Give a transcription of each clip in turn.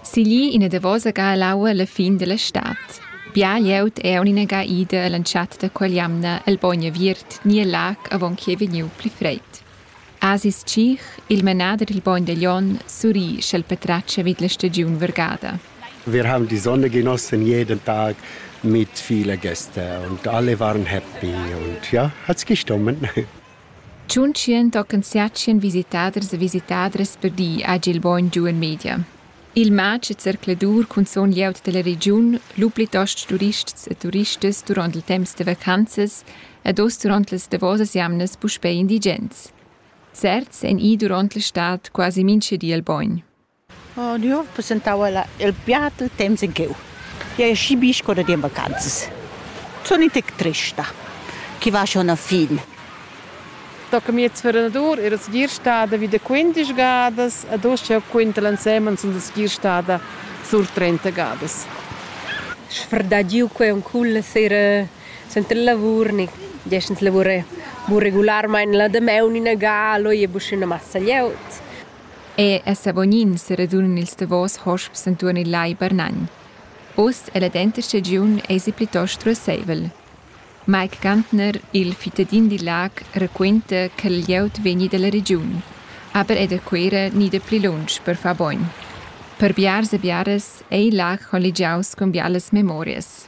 Sigli ina davosa ga ell'aua la fin dalla stad. Bia glieud è ina ga ida all'entschatta da quell'jamna el bogn aviert ni el lac avon ch'ei vegniu pli freid. Asis Tschich, il manader dil bogn da Glion, surri sch'el patratga vid la stagiun vargada. Wir haben die Sonne genossen jeden Tag mit vielen Gästen und alle waren happy und ja, hat's gestummen. Tschuntschien tochen siatschien visitaders e visitadras per di hagi il bogn giu en media. Il matg e zercladur cunzun glieud dalla regiun, lu plitost turists e turistas duront il temps da vacanzas ed oz duront las davosas jamnas puspei indigens. Certs ein i duront la stad quasi mintga di al bogn. Oh nö, passentau il piat il temps in cheu. Jeu schi bi sco da dir in vacanzas. Sun in tec trista, chi va schon a fin. Tocca miez fernadur era segir stada vi da quindisch gadas ed uss jau quinta l'ensemen sun segir stada sur trenta gadas. Sfrdagiu quei on culla sera suenter il lavur ni gest ins lavura bu regularmein la damaun ina ga, leu ei buca ina massa glieud. E a Savognin seradunan ils davos hosps entuorn il Lai Barnagn. Uss è la denta stagiun èsi plitost ruasseivel. Mike Gantner, il fittadin dil lag, raquenta che il glieud vegni dalla regiun, aber è da Cuera ni da pli lunsch per far bogn. Per biars e biaras ei il lag colligiaus cun bialas memorias.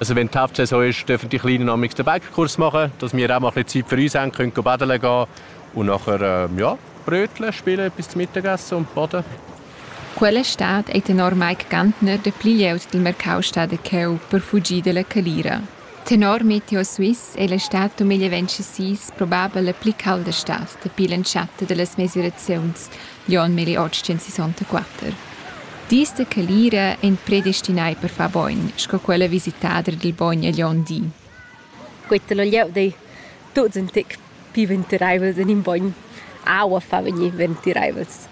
Also wenn die Hauptsaison ist, dürfen die Kleinen am den Bäckerkurs machen, dass wir auch mal ein bisschen Zeit für uns haben, können baden gehen und nachher ähm, ja, Brötchen spielen bis zum Mittagessen und baden. Quella stad ei tenor Mike Gantner de pli glieud dil mercau stada cheu per fugir dalla calira. Tenor Meteo Swiss è la stad 2026 probabel la pli calda stad dapi l'entschatta da las mesiraziuns, Jon Melli otschensisontquatter. Dis da calira ein predestinai per far bogn, sco quella visitader dil bogn egl onn di. Quetta la glieud ei tuts in tec pli ventireivels en in bogn. Aua fa vegnir ventireivels.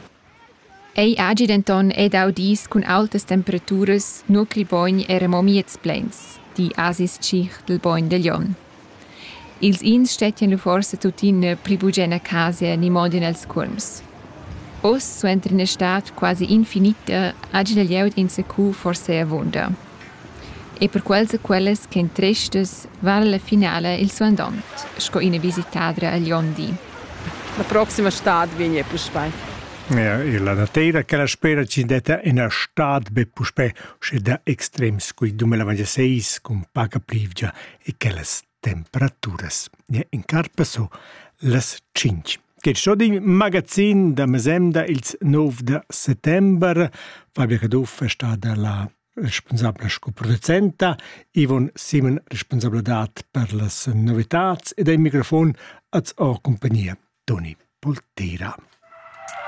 Ei hagi denton ei dau dis cun aultas temperaturas, nua ch'il bogn era mo miez pleins, di Asis Tschich dil bogn da Jon. Ils ins stettien lu forsa tuttina pli bugen a casa ni mo en els cuolms. Oz, suenter ina stad quasi infinita, hagi la glieud enzacu forsa avunda. E per quels e quellas ch'ein trestas vala la finala il suandont sco ina visitadra agl onn di. La proxima stad vegn ei puspei. Ja, e la natira che la spera ci detta ina stad be puspei, sche da extrems cui 2026 cun paca plivgia e quellas temperaturas. Ja, in carpa so las tschinch. Che sto din magazin da mesemda ils 9 da settember. Fabrica Duff è stata la responsabla sco producenta, Ivon Simon responsabla dat per las novitats ed ai microfon az o compagnia Toni Poltera.